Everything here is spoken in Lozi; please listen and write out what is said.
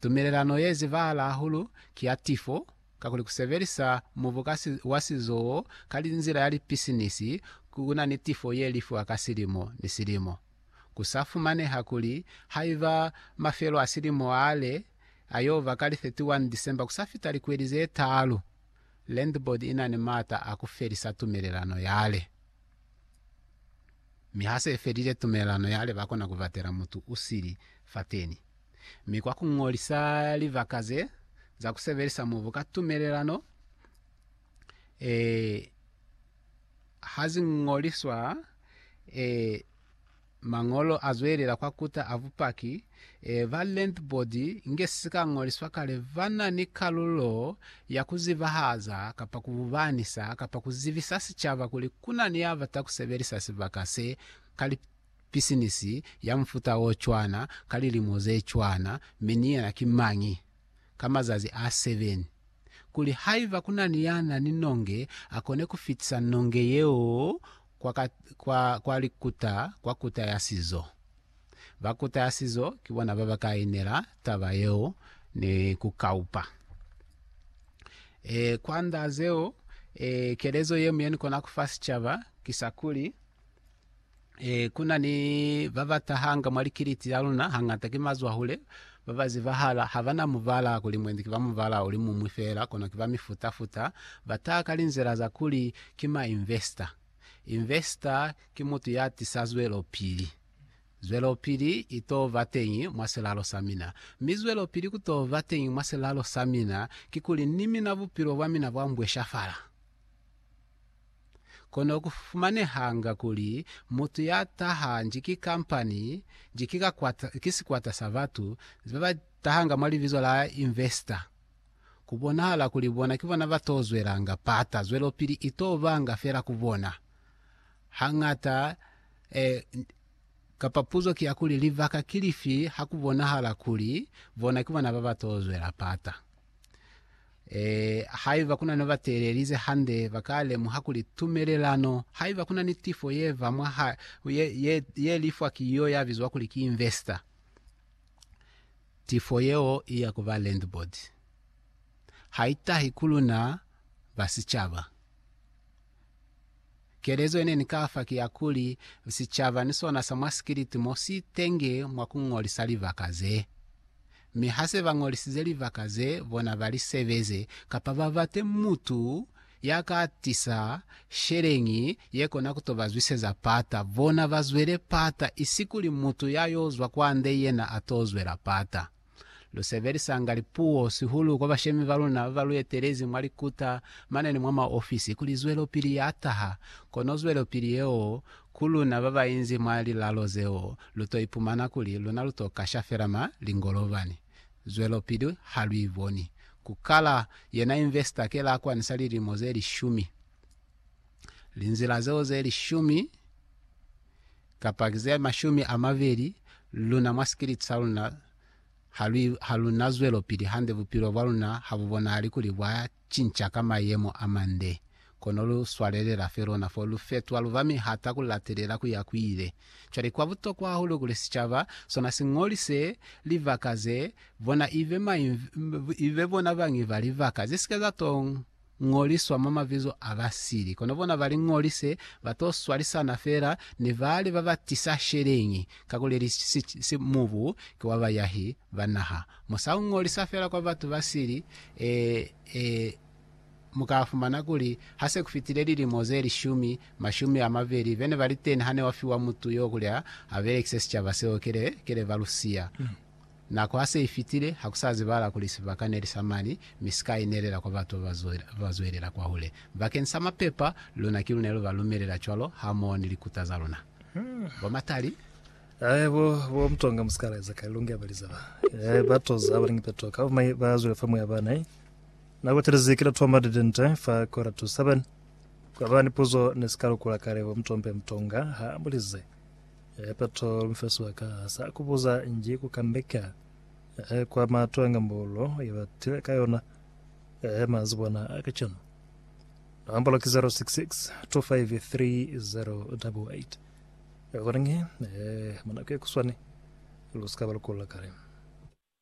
Tumelelano ye zibahala hahulu ki ya tifo, kakuli ku sebelisa mubu ka si, wa sizoo ka linzila ya lipisinisi ku na ni tifo ye lifiwa ka silimo ni silimo. Ku sa fumaneha kuli haiba mafelo a silimo a le a yo ba ka li 31 December ku sa fita likweli ze taalu, Land Board i na ni maata a ku felisa tumelelano yale. Mi ha se felile tumelelano yale ba kona ku batela mutu u sili fateni. Mi kwa ku ñolisa libaka ze za ku sebelisa mubu ka tumelelano, e ha zi ñoliswa, e, Mañolo azwelela kwa kuta a bupaki e ba lentbodi nge si ka ñoliswa kale ba na ni kalulo ya ku zibahaza kapa ku bubanisa kapa ku zibisa sicaba kuli ku na ni ya bata ku sebelisa sibaka se ka li pisinisi ya mufuta o cwana ka lilimo ze cwana mi ni yena ki mañi. ka mazazi a seven, kuli haiba kunani ya na ni nonge akone kufitisa nonge yeo kwa ka, kwa, kwa likuta, kwa kuta ya sizo. Ba kuta ya sizo ki bona baba ka inela taba yeo ni ku kaupa. E, kwa nda zeo, e, kelezo ye mu ye ni kona kufa sicaba ki sa kuli, E, ku na ni ba ba tahanga mwa likiliti la luna, hangata ki mazwahule ba ba zibahala. Ha ba na mubala kuli mwendi ki ba mubala o li muñwi feela, kono ki ba mifuta-futa. Ba taha ka linzila za kuli ki ma investor. Investor ki mutu ya tisa zwelopili. Zwelopili i t'o ba teñi mwa silalo sa mina. Mi zwelopili ku t'o ba teñi mwa silalo sa mina, kikuli ni mina bupilo bwa mina bwa mbweshafala. Kono ku fumanehanga kuli mutu ya taha nji ki kampani, nji ki ka kwata, ki sikwata sa batu ba ba tahanga mwa libizo la investor. Ku bonahala kuli bona ki bona ba t'o zwelanga pata, zwelopili i t'o banga fela ku bona. Hañata, eh, kapa puzo ki ya kuli, libaka ki lifi ha ku bonahala kuli bona ki bona ba ba t'o zwela pata? Ee, haiba kuna ni batelelize hande, baka lemuha kuli tumelelano, haiba kuna ni tifo yeva mwa ha, ye, ye, ye lifwa ki yo ya bizwa kuli ki investor, tifo yeo iya ku ba landboard. Haitahi ku luna ba sicaba. Kelezo ye ne ni ka fa ki ya kuli, sicaba ni sona sa mwa sikiliti mo si tenge mwa ku ñolisa libaka ze. Mi ha se ba ñolisize libaka ze bona ba li sebeze, kapa ba bate mutu ya ka tisa sheleñi ye kona ku to ba zwiseza pata, bona ba zwele pata, isikuli mutu ya yo zwa kwande yena a to zwela pata. Lu sebelisanga lipuo sihulu kwa bashemi ba luna ba ba lu etelezi mwa likuta mane ni mwa maofisi kuli zwelopili ya taha, kono zwelopili yeo ku luna ba ba inzi mwa lilalo zeo lu to ipumana kuli luna lu to kasha fela ma lingolobani. Zwelopili ha lu i boni. Ku kala yena investor ke la kwanisa lilimo ze lishumi. Linzila zeo ze lishumi. kapa ki ze mashumi a mabeli, luna mwa sikiliti sa luna ha lu, ha lu na zwelopili hande, bupilo bwa luna ha bu bonahali kuli bwa cinca ka mayemo a mande. Kono lu swalelela fe lona, fo lu fetwa lu ba mihata ku latelela ku ya ku ile. Cwale, kwa butokwa hahulu kuli sicaba sona si ñolise libaka ze bona, ibe mañi, ibe bona bañi ba libaka ze si ke za tong. ñoliswa mwa mabizo a ba sili. Kono bona ba li ñolise, ba to swalisana fela ni bale ba ba tisa sheleñi, kakuleli si mubu ki wa bayahi ba naha. Mu sa ñolisa fela kwa batu ba sili, ee, ee, mu ka fumana kuli ha se ku fitile lilimo ze lishumi, mashumi a mabeli, bene ba li teni hane wa fiwa mutu yo kuli a, a belekise sicaba seo kele, kele ba lu siya. Nako ha se i fitile, ha ku sa zibahala kuli sibaka ne li sa mani, mi si ka inelela kwa batu ba ba zwelela kwahule. Bakeni sa mapepa, luna ki lu ne lu ba lumelela cwalo, hamoho ni likuta za luna. Bo Matali. Ae, bo, bo Mtonga, musikalaeza kale longi aba liza ba. Ae, ba toza haba lingi peto ka bumai, ba zwela fa muya bana. Ae, nako telezi ki la toma didente fa kora to seven. Kwa ba ni puzo ne si ka lukula kale, bo Mtombe Mtonga ha ambulize. He Petro, mufesi wa ka, ha sa ku buza nji ku kambeka, he kwa mato a ngambolo ye ba tile ka yona, he mazibwana a kacenu. Nombolo ki 0662530088. Kono nge, he, mwa nako ye kuswani, lu si ka ba lu kula kale.